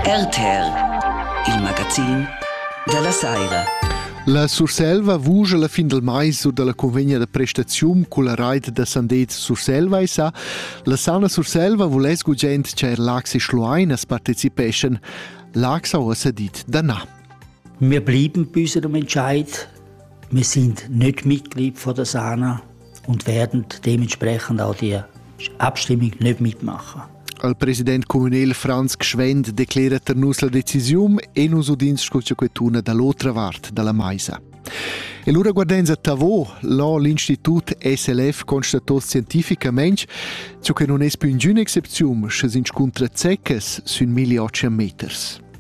RTR, il magazin dalla saira. La Surselva vuja la fin del mais u dalla convegna da prestaziun culla raid da Sandez Surselva e sa la Sauna Surselva vuless gugent che er Lax e Schlueinas participeschen. Lax ha ussa dit da na. Wir blieben bis zum Entscheid. Wir sind nicht Mitglied von der Sauna. und werden dementsprechend auch die Abstimmung nicht mitmachen. Al president communal Franz Gschwend declera tar nus la decisiun e nus udins sco quetuna dall'otra vart dalla maisa. E lura guardenza a Tavo, là l'Institut SLF constato scientificamente ciò che non è più in excepzione, sche si inscontra zeccas sün 1800 meters.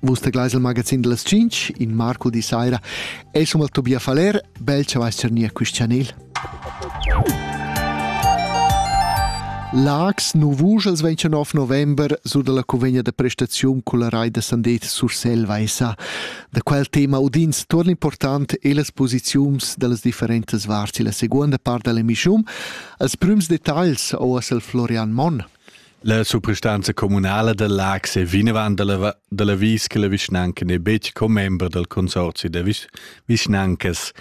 Vus te gleis il magazin dals 5 in marco di saira e somma Tobias Faller, bel che vais cernia quist chanel. Lags Novus als 29 november sur dalla convegna da prestaziun culla rai da Sandet sur Selvaisa. Da quel tema udins tuorn important e las posiziuns dallas differentas varts la seconda part dall'emissiun als prüms detagls o al Florian Monn. La suprastanza communala da Laax è vinavant da la, da l'avis che la vischnanca n'è betg commembra dal consorzi da vis vischnancas.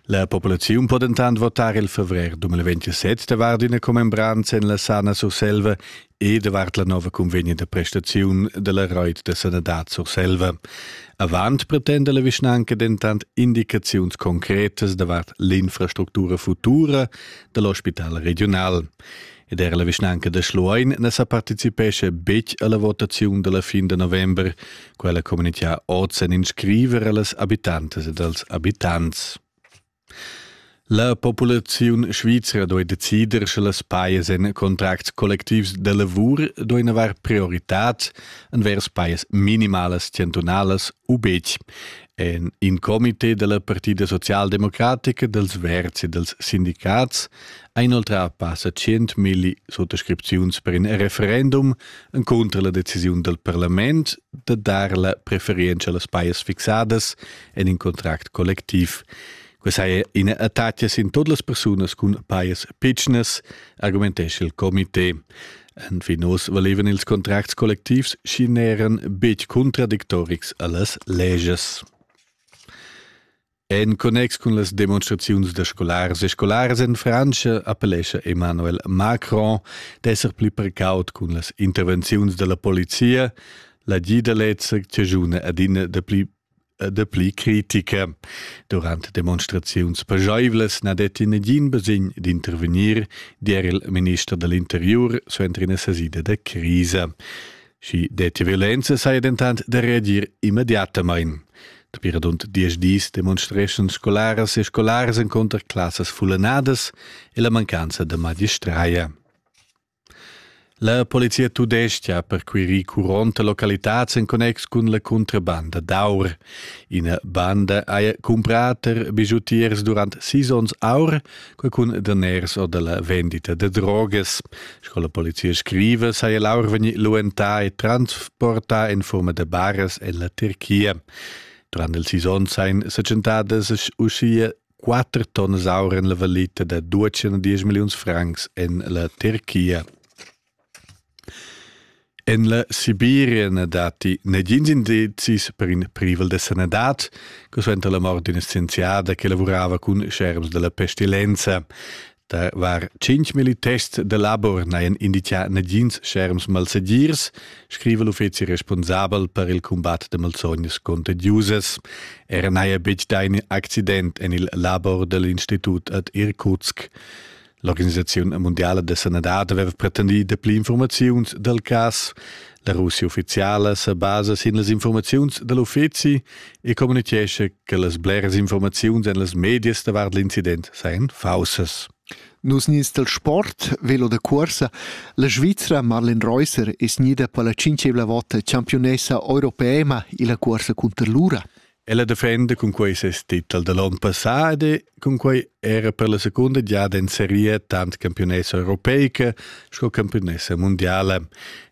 La populaziun po dentant votar il favrer 2027 davart ina commembranza en la Sana Surselva e davart la nova convegna da prestaziun da la Reut da sanadad Surselva. Avant pretenda la vischnanca dentant indicaziuns concretas davart l'infrastructura futura da l'ospital regional. ed er la vischnanca da Schluein na sa participescha betg alla votaziun dalla fin de november, quella comunitia oz en in scriver allas habitantes ed als abitants. La populaziun svizra doi decider sche las paias en contracts collectivs de lavur doi navar prioritat envers paias minimalas centunalas u betg. En in comité della Partida Socialdemocratica dels Verzi dels Sindicats ha inoltrà passa tschientmilli suttascripziuns per in referendum encunter la decisiun dal parlament da dar la preferienza a las pajas fixadas en in contract collectiv. Questa è ina attacca sin todas las persunas cun pajas pitschnas, argumentesce il comité. En Finos valevan ils contracts kollektivs și n'eran betg contradictorics a las leges. En connex cun las demonstraziuns da scolars e scolaras en Frantscha appellescha Emmanuel Macron d'esser pli precaut cun las intervenziuns dalla polizia, la gidelezza chajuna adina da pli de pli critica. Durante demonstraziuns pageivlas na detti negin basegn d'intervenir, dir il minister dell'interior suenter ina sasida da crisa. Schi detti violenza saja dentant da reagir immediatamain. Dapi radund diesch dis demonstreschan scolaras e scolars encunter classas fullanadas e la mancanza da magistraia. La polizia tudestga ha perquirì curont a localitads en connex cun la cuntrabanda d'aur. Ina banda haja cumprà per bigiutiers durant sis onns aur qualcun daners o della vendita de droges. Sco la polizia scrive, sai Laur veni luentà e transportà in forma de bares en la Turchia. Durant il season sein secentadas uschia 4 tonnes aur en la valita de 210 milions francs en la Turchia. En la Sibiria na datti negins indizis per in privel da sanadad, che suenter la mort d'ina scienziada che lavurava cun scherms della pestilenza. Da var cinc militests da labor n'hajan indizià negins scherms malsegirs, scriva l'uffizi responsabel per il combat da malsognas contagiusas. Era n'haja betg dà in accident en il labor dell'institut ad Irkutsk. L'organisaziun mundiala da sanadad aveva pretendì dapli informaziuns dal cas. La Russia uffiziala sa basa sin las informaziuns da l'uffizi e communitgescha che las bleras informaziuns en las medias davart l'incident sajan faussas. Nus nies del sport, velo da cuorsa, la Svizzera Marlene Reusser es gnida per la cinquevla vota championessa europeema illa cuorsa cunter l'ura. Ella defenda cun quei ses titel da l'onn passà ed cun quei era per la secunda giada en seria tant campionessa europeica sco campionessa mondiala.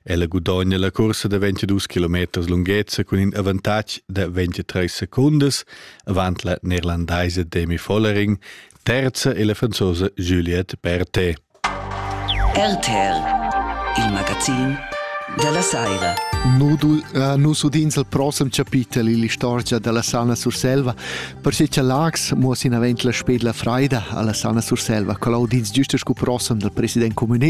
Ella gudogna la cursa da 22 km lunghezza cun in avantatg da 23 secundas avant la neerlandaise Demi Vollering, terza e la franzosa Juliette Berthet. RTL, il magazin dalla saira. Nudul, uh, nus udins il prossem chapitel ill'istorgia dalla Sana Surselva, perche cha Lax muoss inavent la spedla freida alla Sana Surselva, co l'audins giusta scu prossem dal president communal